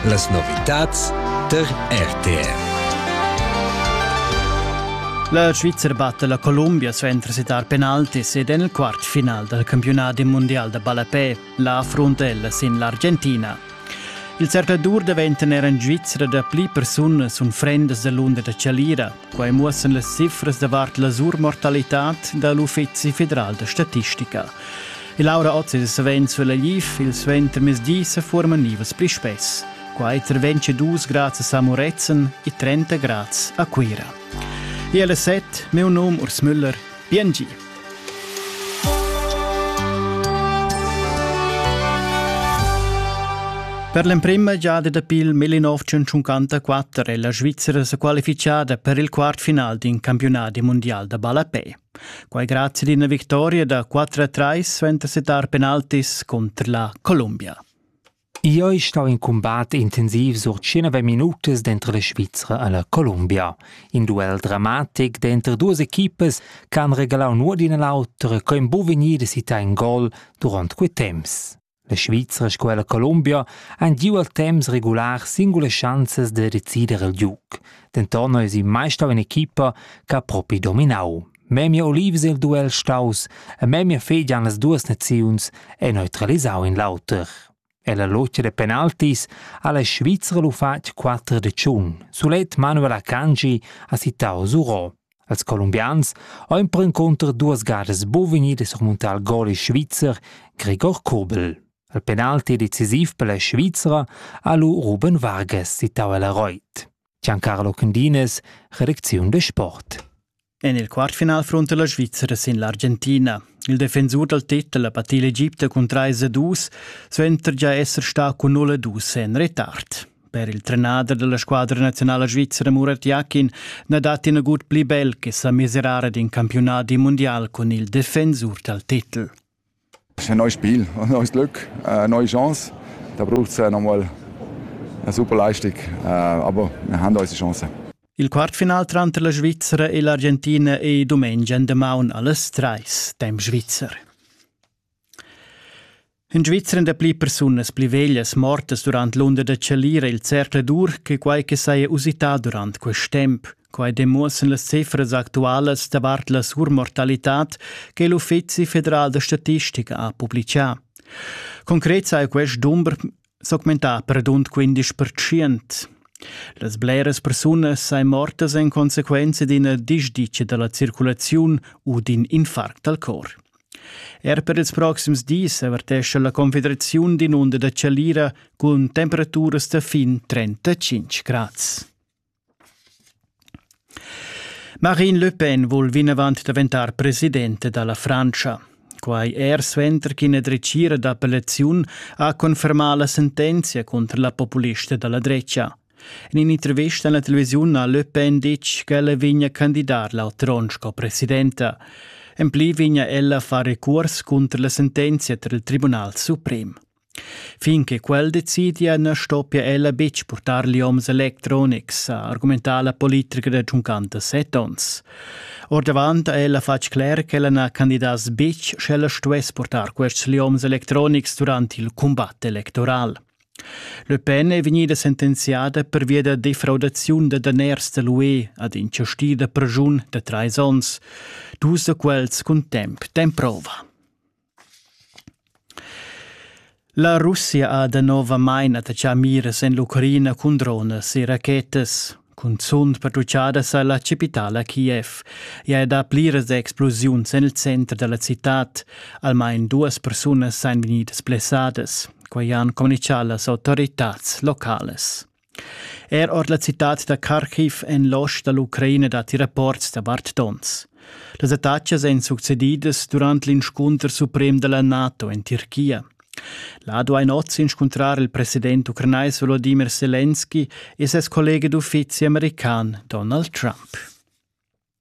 Las novitads tar RTR. La Svizra batta la Columbia suenter sitar penaltis ed en il quart final dal campiunadi mundial da ballapè, la Frontella sin l'Argentina. Il cercladur daventa er en Svizra da pli persunas unfrendas da l'unda da Chalira. Quai muossan las cifras davart la surmortalitad da l'Uffizi federal da statistica. Il Laura Oz è savens sulla LIF, il suentermezdi sa forman nivas pli spess. Qua è tra 22 grads a Moretzen e 30 grads a Cuira. E alle 7 meu num Urs Müller. Bien Per l'emprema giada dapi il 1954 è la Svizzera qualifichada per il quartfinal d'un campionat mondial da ballapè. Quai grazie ad una vittoria da 4-3 suenter setar penaltis contro la Colombia. Ioi stau in cumbat intensiv sur tschinove minutas denter la Svizra e la Columbia. In duel dramatic denter duas equipas che han regalau nuot d'ina l'autra co ein buca vegnidas sitai in gol duront quei temps. La Svizra sco e la Columbia han giu al temps regular singulas schanzas da decider il giug. Denton eis ei mai stau in equipa che ha propi dominau. Memia olivs il duel staus e memia fegian las duas naziuns e neutralisau in l'auter. E la logia de penaltis ha la Svizra lu fatg quatter de tschun. Sulet Manuel Akanji ha citau Zuro. Als colombians ho impro inconter duas gadas bovegni de surmuntar il gol svizzer Gregor Kobel. Il penalti decisiv per la Svizra ha lu Ruben Vargas citau el Reut. Giancarlo Cundines, Redaktion de Sport. En il quartfinal fronte la Svizzera sin l'Argentina. Il defensur dal titel ha patì l'Egipte cun 3-2, suenter già esser stà cun 0-2 en retard. Per il trenader della squadra nazionale svizzera Murat Yakin na dat in gut pli bel che sa miserare d'in campionat di mondial con il defensur dal titel. È neu Spiel, neues Glück, äh, neue Chance. Da braucht es äh, nochmal eine super Leistung, äh, aber wir haben unsere Chance. Il quartfinal tranter la Svizzera e l'Argentina è domenica in demaun alles treis, dem Schweizer. In Svizzera da pli persunas pli veglias mortas durant l'unda da Chalira il Cercle dur che quai che saja usità durant quest temp. Quai demuossan las cifras actualas davart la surmortalitad che l'Uffizi federal da statistica ha publicà. Concret sai quest dumber s'augmentà per rund 15 percent. Las bleras persunas sain mortas en consequenza d'ina disdicia da la circulaziun u d'in infarct al cor. Er per ils proxims dis avertescha la Confederaziun d'in onda da chalira cun temperaturas da fin 35 grads. Marine Le Pen vul vinavant daventar presidenta da la Frantscha. Quai er suenter ch'ina dretgira d'appellaziun ha confermà la sentenzia cunter la populista da la drecha. En in'intervista en la televisiun ha Le Pen ditg ch'ella vegnia candidar l'altron sco presidenta. En pli vegnia ella a far recurs cunter la sentenzia tar il Tribunal suprem. Fin che quel decidia na stoppia ella betg purtar lioms electronics, ha argumentà la politica da tschuncanta set onns. Ordavant ha ella fatg cler ch'ella na candidass betg sch'ella stuess purtar quests lioms electronics durant il cumbat electoral. Le Pen è vegnida sentenziada pervia da defraudaziun da daners da l'UE ad in chastì da pregiun da trais onns, dus da quels cun temp temprova. La Russia ha danovamain attaccà miras en l'Ucraina cun dronas e rachetas. Cunzunt patrugliadas a la chapitala Kiev. I ha dà pliras explosiuns en il center da la citad. Almain duas persunas èn vegnidas blessadas. Quai han communitgà las autoritads localas. Er ord la citad da Kharkiv en l'ost da l'Ucraina datti rapports davart donns. Las attacas èn succedidas durant l'inscunter suprem da la NATO en Tirchia. La ha ein oz inscuntrar il president ucranais Volodymyr Zelensky e ses collega d'uffizi american Donald Trump.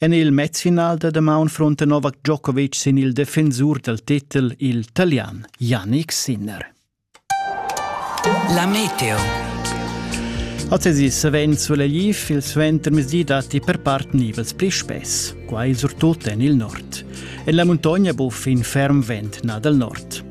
En il mezfinal da damaun frunta Novak Djokovic sin il defensur dal titel il talian Yannick Sinner. La meteo. Ozezi savens vul Lviv il suentermezdi datti per part nivels pli spess, quai surtut en il nord. En la muntogna buffa in ferm vent nà dal nord.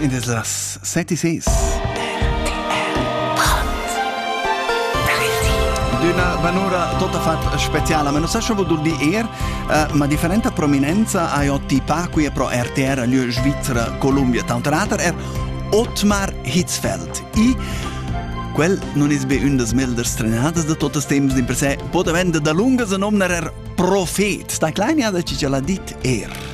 Id es las seti ses. D'üna vanura tota fat speciala, ma non sa scho voul dir eir, uh, ma differenta prominenza ha ot tipà quia pro RTR, lieu Svizzera, Columbia, Taunterater er Otmar Hitzfeld. I Quel non es be ün das melders trenadas da totes temps din per se, po daventa da lunga se nomnar er profet. Sta klein ja da ci ce l'ha dit er.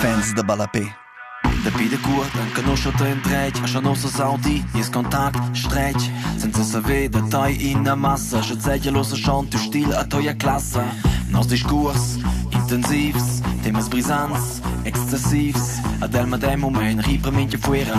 Fans da ballapè. Dapi dacuort enconuscha ta endretg, scha nossa saudi, nies contact stretg. Senza saver da tai ina massa, sche zegia l'ossa chantu stil a toia classa. Nos discurs intensivs, temas brisants, extensivs, ad el madem mument ripa mincha fuera.